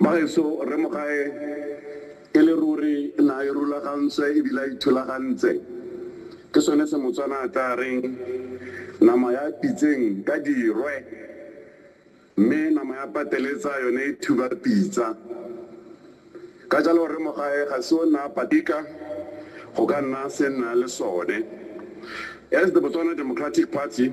Bagaetsho, Rre Mogae e le ruri na a irulagantswe e bile a ithulagantse. Ke sone se Motswana a tlaa reng, Nama ya pitseng ka dirwe, mme nama ya pateletsa yone e thuba pitsa. Ka jalo Rre Mogae ga se o nna a patika go ka nna se nna le sone. As the Botswana Democratic Party,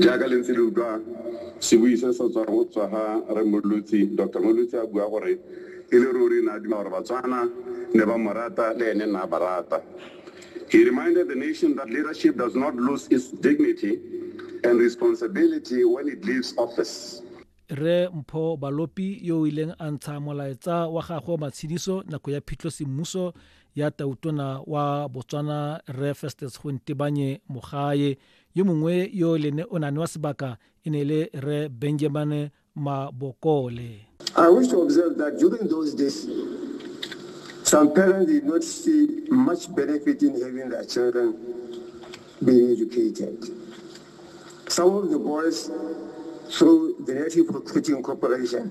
Jaaka le ntse le utlwa sebui se se tswang go tswa ga Rre Mmolotsi, Doctor Mmolotsi a bua gore e le ruri ne a duma gore Batswana ne ba mo rata le ene ne a ba rata. He reminded the nation that leadership does not lose its dignity and responsibility when it leaves office. Rre Mpho Balopi yo o ileng a ntsha molaetsa wa gagwe wa matshediso nako ya phitlho semmuso ya Tautona wa Botswana Rre Festus Gontebanye Mogae yo mongwe yo le ne o nane wa sebaka e ne le re benjamin mabokole I wish to observe that during those days, some parents did not see much benefit in having their children being educated. Some of the boys, through the Native Recruiting Corporation,